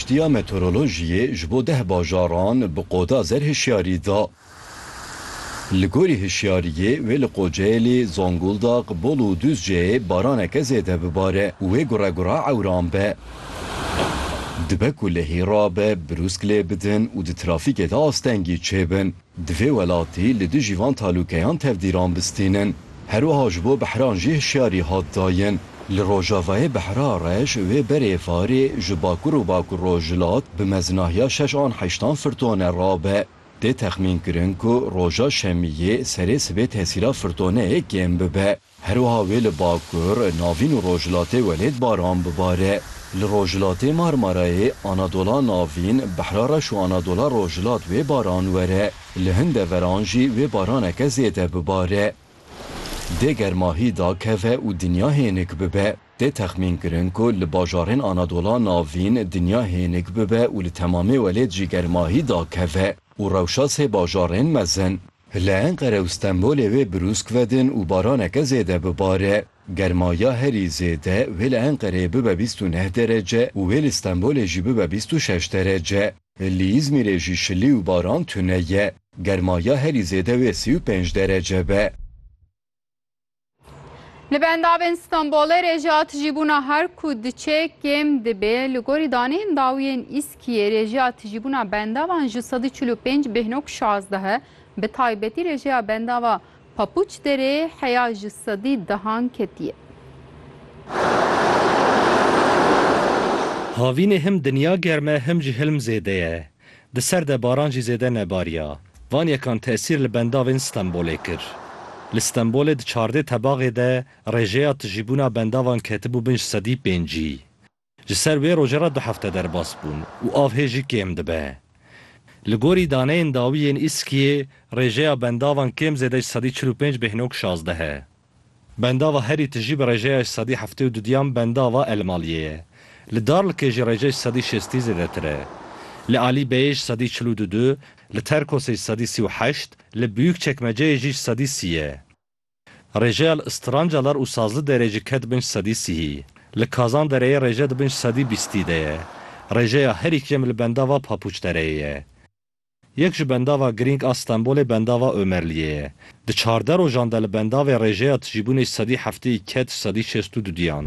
Giştiya Meteorolojiyê ji bo deh bajaran bi qoda zer hişyarî da. Li gorî hişyariyê wê li Qoceylê, Zonguldak, Bolu û Duzceyê baraneke zêde bibare û wê gure gure ewran be. Dibe ku lehî rabe, brûsk lê bidin û di trafîkê de astengî çêbin. Di vê welatî li dijî van talûkeyan tevdîran bistînin. Herwiha ji bo behran jî hişyarî hat dayin. Li rojavayê behra reş wê berê varê ji bakur û bakurrojhilat bi mezinahiya şeş an heştan firtone rabe. Tê texmînkirin ku roja şemiyê serê sibê tesîra firtoneyê kêm bibe. Herwiha wê li Bakur, Navîn û Rojhilatê welêt baran bibare. Li Rojhilatê Marmarayê, Anadola Navîn, Behra Reş û Anadola Rojhilat wê baran were. Li hin deveran jî wê baraneke zêde bibare. Dê germahî dakeve û dinya hênik bibe. Tê texmînkirin ku li bajarên Anadola Navîn dinya hênik bibe û li temamê welêt jî germahî dakeve û rewşa sê bajarên mezin. Li Enqere û Stenbolê wê brûsk vedin û baraneke zêde bibare. Germa ya herî zêde wê li Enqereyê bibe bîst û neh derece û wê li Stenbolê jî bibe bîst û şeş derece. Li Îzmîrê jî şilî û baran tune ye. Germa ya herî zêde wê sî û pênc derece be. Li bendavên Stenbolê rêjeya tijîbûna her ku diçe kêm dibê. Li gorî daneyên dawiyên îskiyê rêjeya tijîbûna bendavan ji sedî çil û pênc bêhno ku şazdeh e. Bi taybetî rêjeya bendava Papuç derê heya ji sedî dehan ketiye. Havînê him dinya germ e him jî hilm zêde ye. Di ser de baran jî zêde nebariya. Van yekan tesîr li bendavên Stenbolê kir. Li Stenbolê di çardê tebaxê de rêjeya tijîbûna bendavan ketibû binc sedî pêncî. Ji ser wê roje re du hefte derbas bûn û av hê jî kêm dibe. Li gorî daneyên dawî yên Îskiyê rêjeya bendavan kêm zêde ji sedî çil û pênc bêhnog şazdeh e. Bendava herî tijî bi rêjeya ji sedî heftê û du diyan bendava Elmaliyê ye. Li Darlikê jî rêje ji sedî şêstî zêdetir e. Li Alî Beyê ji sedî çil û du du, li Terkosê ji sedî sî û heşt, li Biyûk Çekmeceyê jî ji sedî sî ye. Rêjeya li Strancalar û Sazli Derê jî ket bin ji sedî sîhî. Li Kazan Dereyê rêje di bin ji sedî bîstî de ye. Rêjeya herî kêm li bendava Papuç Dereyê ye. Yek ji bendava girîng a Stenbolê bendava Omerliyê ye. Di çardeh rojan de li bendavê rêjeya tijîbûnê sedî heftê û ked sedî şêst û du diyan.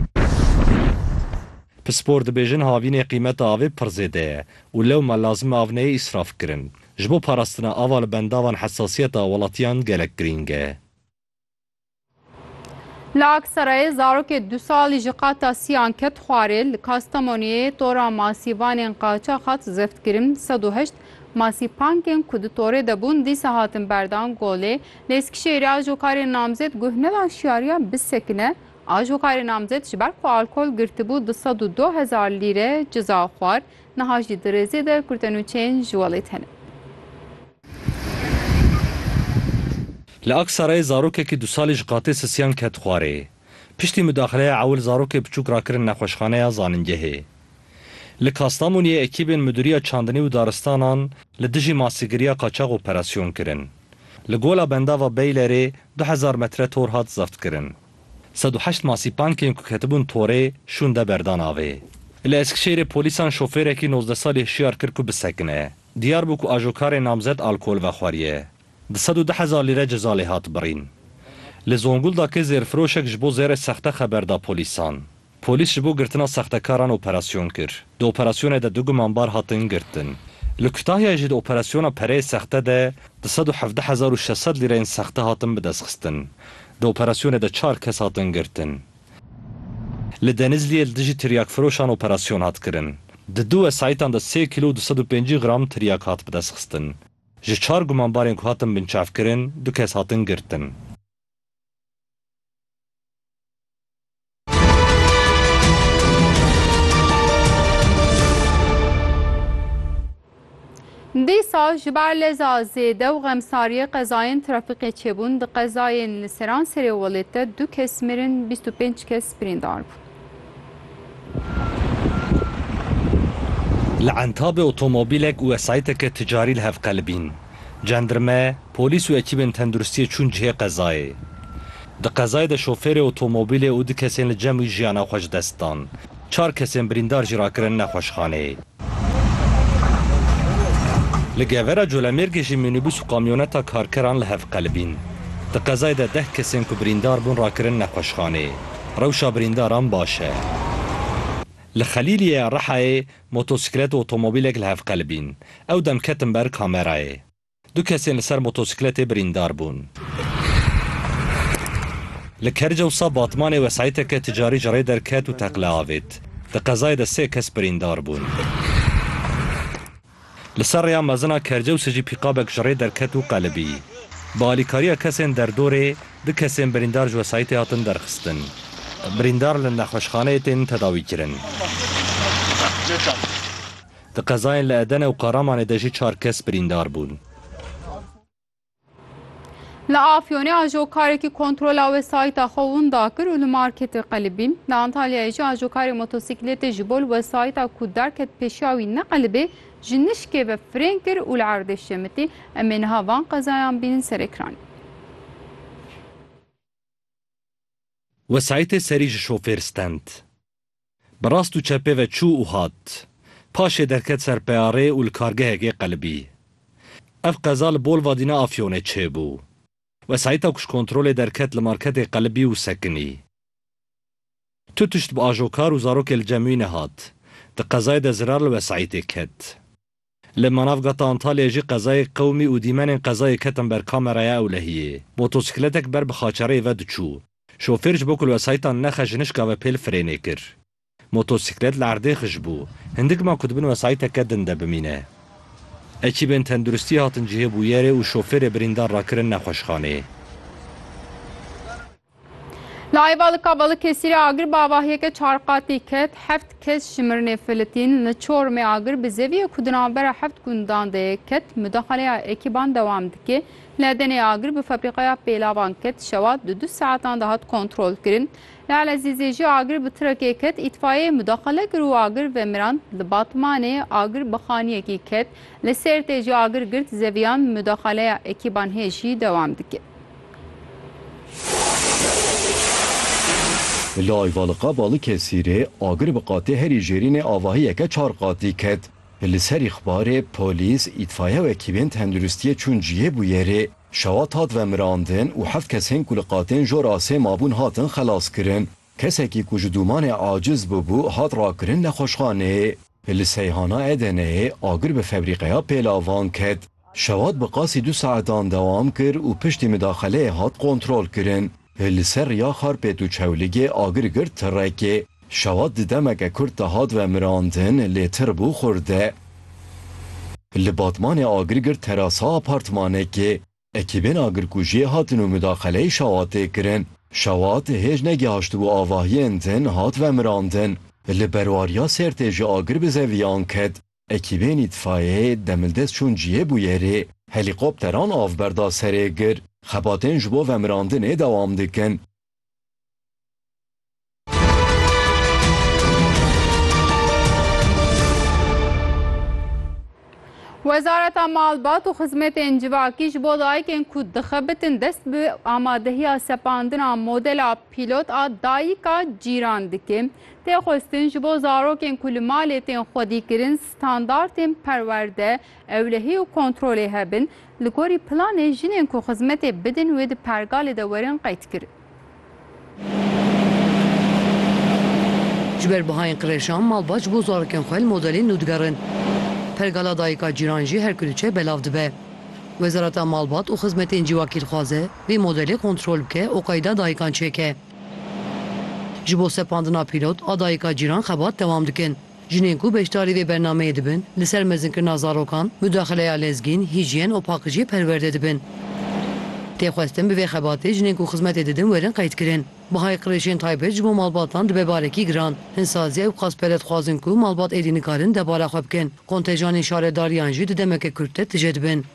Pispor dibêjin havînê qîmeta avê pir zêde ye û lewma lazim e av neyê îsraf kirin. Ji bo parastina ava li bendavan hesasiyeta welatiyan gelek girîng e. Li Aksarayê zarokê du salî ji qata siyan ket xwarê, li Kastamoniyê tora masîvanên qaçax hat zeftkirin, sed û heşt masîpankên ku di torê de bûn dîsa hatin berdan golê. Li Eskişehîrê ajokarê namzet guh nedan şiyariya bisekine, ajokarê namzet ji ber ku alkol girtibû du sed û du hezar lîre ciza xwar, niha jî di rêzê de kurtenûçeyên ji welêt hene. Li Aksarayê zarokekî du salî ji qatê sisiyan ket xwarê. Piştî mudaxileya ewil zarokê biçûk rakirin nexweşxaneya zanîngehê. Li Kastamoniyê ekîbên Midûriya Çandinî û Daristanan li dijî masîgiriya qaçax operasyon kirin. Li Gola Bendava Beylerê du hezar metre tor hat zeftkirin. Sed û heşt masîpankên ku ketibûn torê şûnde berdan avê. Li Eskişehîrê polîsan şofêrekî nozdeh salî hişyar kir ku bisekine. Diyar bû ku ajokarê namzet alkol vexweriye, di sed û deh hezar lîre ceza lê hat birîn. Li Zonguldakê zêrfiroşek ji bo zêrê sexte xeber da polîsan. Polîs ji bo girtina sextekaran operasyon kir. Di operasyonê de du gumanbar hatin girtin. Li Kutahyayê jî di operasyona pereyê sexte de di sed û hevdeh hezar û şeş sed lîreyên sexte hatin bidestxistin. Di operasyonê de çar kes hatin girtin. Li Denizliyê li dijî tiryakfiroşan operasyon hat kirin. Di du wesayîtan de sê kîlo û du sed û pêncî gram tiryak hat bidestxistin. Ji çar gumanbarên ku hatin binçavkirin du kes hatin girtin. Dîsal ji ber leza zêde û xemsariyê qezayên trafîkê çêbûn, di qezayên li Seranserê Welêt de du kes mirin, bîst û pênc kes birîndar bûn. Li Entabê otomobîlek û wesayîteke ticarî li hev qelibîn. Cendirme, polîs û ekîbên tenduristiyê çûn cihê qezayê. Di qezayê de şofêrê otomobîlê û du kesên li cem wî jiyana xwe ji dest dan. Çar kesên birîndar jî rakirin nexweşxaneyê. Li Gevera Colemêrgê jî mînîbûs û kamyoneta karkeran li hev qelibîn. Di qezayê de deh kesên ku birîndar bûn rakirin nexweşxaneyê. Rewşa birîndaran baş e. Li Xelîliyê ya Rihayê motosîklet û otomobîlek li hev qelibîn. Ew dem ketin ber kamerayê. Du kesên li ser motosîkletê birîndar bûn. Li Kercewsa Batmanê wesayîteke ticarî ji rê derket û teqle avêt. Di qezayê de sê kes birîndar bûn. Li ser rêya mezina Kercewsê jî pîkabek ji rê derket û qelibî. Bi alîkariya kesên derdorê du kesên birîndar ji wesayîtê hatin derxistin. Birîndar li nexweşxaneyê tên tedawîkirin. Di qezayên li Edene û Karamanê de jî çar kes birîndar bûn. Li Afyonê ajokarekî kontrola wesayîta xwe winda kir û li marketê qelibîn. Li Antalyayê jî ajokarê motosiklêtê ji bo li wesayîta ku derket pêşiya wî neqelibê ji nişkê ve firên kir û li erdê şemitî. Em ê niha van qezayan bînin ser ekranê. Wesayîtê serî ji şofêr stend. Bi rast û çepê ve çû û hat. Paşê derket ser peyarê û li kargehekê qelibî. Ev qeza li Bolvadîna Afyonê çêbû. Wesayîta kuşkontrolê derket li marketê qelibî û sekinî. Tu tişt bi ajokar û zarokê li cem wî nehat. Di qezayê de zirar li wesayîtê ket. Li manavgata Antalyayê jî qezayê qewimî û dîmenên qezayê ketin ber kameraya ewlehiyê. Motosikletek ber bi xaçereyê ve diçû. Şofêr ji bo ku li wesayîtan nexe jinişka ve pêl firênê kir. Motosiklet li erdê xij bû. Hindik ma ku di bin wesayîteke din de bimîne. Ekîbên tenduristiyê hatin cihê bûyerê û şofêrê birîndar rakirin nexweşxaneyê. Li Ayvalıka Balıkesirê agir bi avahiyeke çar qatî ket, heft kes ji mirinê filitîn. Li Çorumê agir bi zeviyê ku di navbera heft gundan de ye ket. Mudaxaleya ekîban dewam dike. Li Edenê agir bi febrîqeya pêlavan ket, şewa di du saetan de hat kontrolkirin. Li Elezîzê jî agir bi tirekê ket, îtfaiyeyê mudaxale kir û agir vemirand. Li Batmanê agir bi xaniyekî ket. Li Sêrtê jî agir girt zeviyan, mudaxaleya ekîban hê jî dewam dike. Li Ayvalıqa Balıkesirê agir bi qatê herî jêrînê avahiyeke çar qatî ket. Li ser îxbarê polîs, îtfaiye û ekîbên tenduristiyê çûn cihê bûyerê. Şewat hat vemirandin û heft kesên ku li qatên jor asê mabûn hatin xelaskirin. Kesekî ku ji dûmanê aciz bûbû hat rakirin nexweşxaneyê. Li Seyhana Edeneyê agir bi febrîqeya pêlavan ket. Şewat bi qasî du saetan dewam kir û piştî midaxeleyê hat kontrolkirin. Li ser riya Xarpêt û Çewligê agir girt tirekê. Şewat di demeke kurt de hat vemirandin lê tir bû xurde. Li Batmanê agir girt terasa apartmanekê. Ekîbên agirkujiyê hatin û mudaxeleyê Şawat tê kirin. Şawat hêj negihaştibû avahiyên din hat vemirandin. Li berwariya Sêrtê jî agir bi zeviyan ket. Ekîbên îtfayeyê demildest çûn cihê bûyerê. Helîkopteran av berda serê gir. Xebatên ji bo vemirandinê dewam dikin. Wezareta Malbat û Xizmetên Civakî ji bo dayikên ku dixebitin dest bi amadehiya sepandina modela pîlot a Dayika Cîran dike. Tê xwestin ji bo zarokên ku li malê tên xwedîkirin standartên perwerde, ewlehî û kontrolê hebin. Li gorî planê jinên ku xizmetê bidin wê di pergalê de werin qeydkirin. Ji ber bihayên qirêjan malbat ji bo zarokên xwe li modelên nû digerin. Pergala Dayika Cîran jî her ku diçe belav dibe. Wezareta Malbat û Xizmetên Cîwakî dixwaze vê modelê kontrol bike û qeyda dayikan çêke. Ji bo sepandina pîlot a Dayika Cîran xebat dewam dikin. Jinên ku beşdarî vê bernameyê dibin, li ser mezinkirina zarokan, mudaxileya lezgîn, hîjyen û paqijiyê perwerde dibin. Tê xwestin bi vê xebatê jinên ku xizmetê didin werin qeydkirin. Bihayê qirêjên taybet ji bo malbatan dibe barekî giran. Hinsazîya û qazpere dixwazin ku malbat êdî nikarin debara xwe bikin. Kontejanên şaredariyan jî di demeke kurt de tije dibin.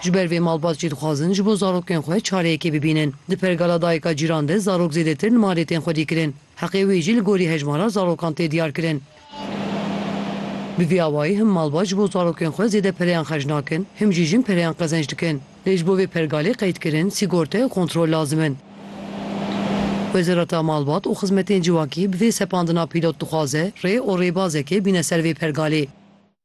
Ji ber vê malbat jî dixwazin ji bo zarokên xwe çareyekê bibînin. Di pergala dayika cîran de zarok zêdetir nima rêtên xwedî kirin. Heqê wê jî li gorî hejmara zarokan tê diyarkirin. Bi vî awayî him malbat ji bo zarokên xwe zêde pereyan xerc nakin, him jî jin pereyan qezenc dikin. Lê ji bo vê pergalê qeydkirin, sîgorte û kontrol lazim in. Wezareta Malbat û Xizmetên Civakî bi vê sepandina pîlot dixwaze rê û rêbazekê bîne ser vê pergalê.